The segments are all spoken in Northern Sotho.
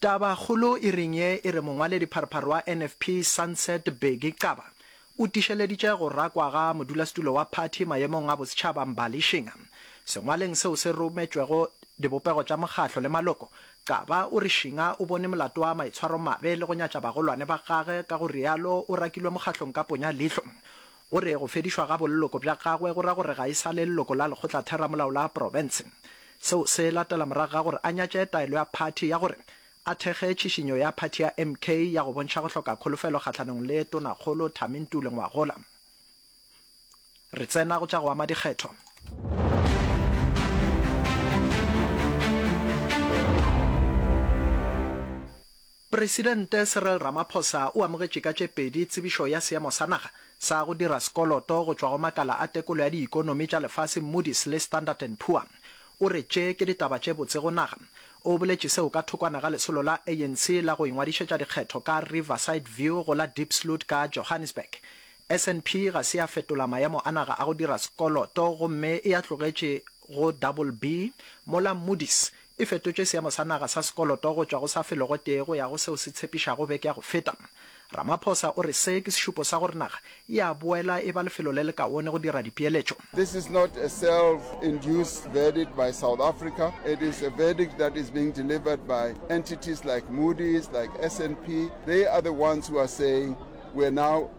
Tabakgolo e reng ye e re mongwaledipharphar wa NFP Sunset Bheki Xaba o tišeleditše go rakwa ga modulasetulo wa phathi mayemong a bosetšhaba Mbali Shinga. Sengwaleng seo se rometšwego dibopego tša mokgahlo le maloko, Xaba o re Shinga o bone molato wa maitshwaromabe le go nyatša bagolwane ba gage ka go realo o rakilwe mokgahlong ka ponya leihlo. O re go fedišwa ga bolloko bja gagwe go ra gore ga e sa le leloko la lekgotlatheramolao la profense. Seo se latela morago ga gore a nyatše taelo ya phathi ya gore a thekge tšhišinyo ya phathi ya MK ya go bontšha go hloka kholofelo kgahlanong le Tonakgolo Thami Ntuli Ngwagola. Re tsena go tša go ama dikgetho. Presidente Cyril Ramaphosa o amogetše ka tše pedi tsebišo ya seemo sa naga sa go dira sekoloto go tšwa go makala a tekolo ya diikonomi tša lefase Moody's le Standard and Poor. O re tše ke ditaba tše botse go naga. O boletše seo ka thokwana ga lesolo la ANC la go ingwadišetša dikgetho ka Riverside View go la Diepsloot ka Johannesburg. SNP ga se ya fetola maemo a naga a go dira sekoloto gomme e a tlogetše go BB mola Moody's e fetotše seemo sa naga sa sekoloto go tšwa go sa felego tee go ya go seo se tshepišago beke ya go feta. Ramaphosa o re se ke sešupo sa gore naga e a boela e ba lefelo le le kaone go dira dipeeletšo. This is not a self induced verdict by South Africa, it is a verdict that is being delivered by entities like Moody's, like SNP, they are the ones who are saying we are now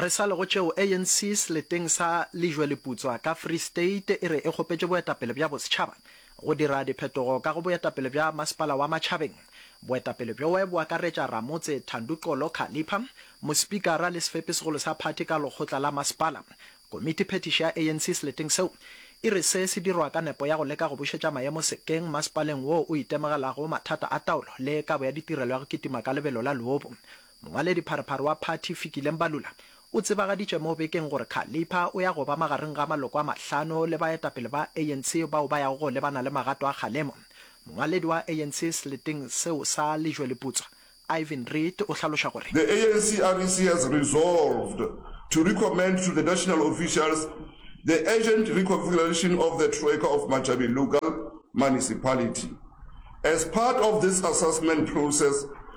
Re sa lego tšeo, ANC seleteng sa Lejwe-Leputswa ka Free State e re e kgopetše boetapele bja bosetšhaba go dira diphetogo ka go boetapele bja masepala wa Matšhabeng. Boetapele bjoe bo akaretša Ramotse Thandu Xolo Khalipha, Mospikara le sefepi segolo sa phathi ka lekgotla la masepala. Komiti phethiši ya ANC seleteng seo e re se se dirwa ka nepo ya go leka go bušetša maemo sekeng masepaleng woo o itemogelago mathata a taolo le kabo ya ditirelo ya go kitima ka lebelo la leobu. Mongwaledipharephare wa phathi Fikile Mbalula o tsebagaditše mo bekeng gore Khalipha o ya go ba magareng ga maloko a mahlano le baetapele ba ANC bao ba yago go lebana le magato a kgalemo. Mongwaledi wa ANC seleteng seo sa Lejweleputswa, Ivan Reid o hlaloša gore. The ANC REC has resolved to recommend to the national officials the urgent reconfiguration of the Troika of Machabi Lugal Municipality. As part of this assessment process,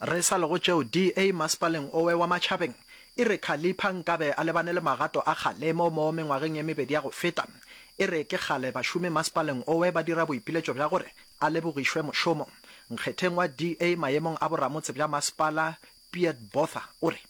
Re sa le go tšeo, DA masepaleng owe wa Matšhabeng e re Khalipha nkabe a lebane le magato a kgalemo mo mengwageng e mebedi ya go feta. E re ke kgale bašomi masepaleng owe ba dira boipiletšo bja gore a lebogišwe mošomo. Nkgetheng wa DA mayemong a boramotse bja masepala, Piet Botha o re.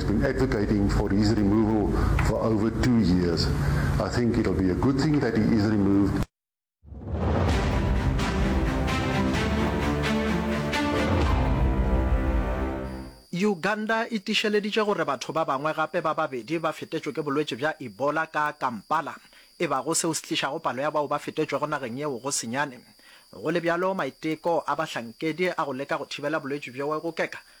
He's been advocating for his removal for over two years. I think it'll be a good thing that he is removed. Uganda e tišeleditše gore batho ba bangwe gape ba babedi ba fetetšwe ke bolwetši bja Ebola ka Kampala, e bago seo se tlišago palo ya bao ba fetetšwego nageng yeo go senyane. Go le bjalo, maiteko a bahlankedi a go leka go thibela bolwetši bjo go keka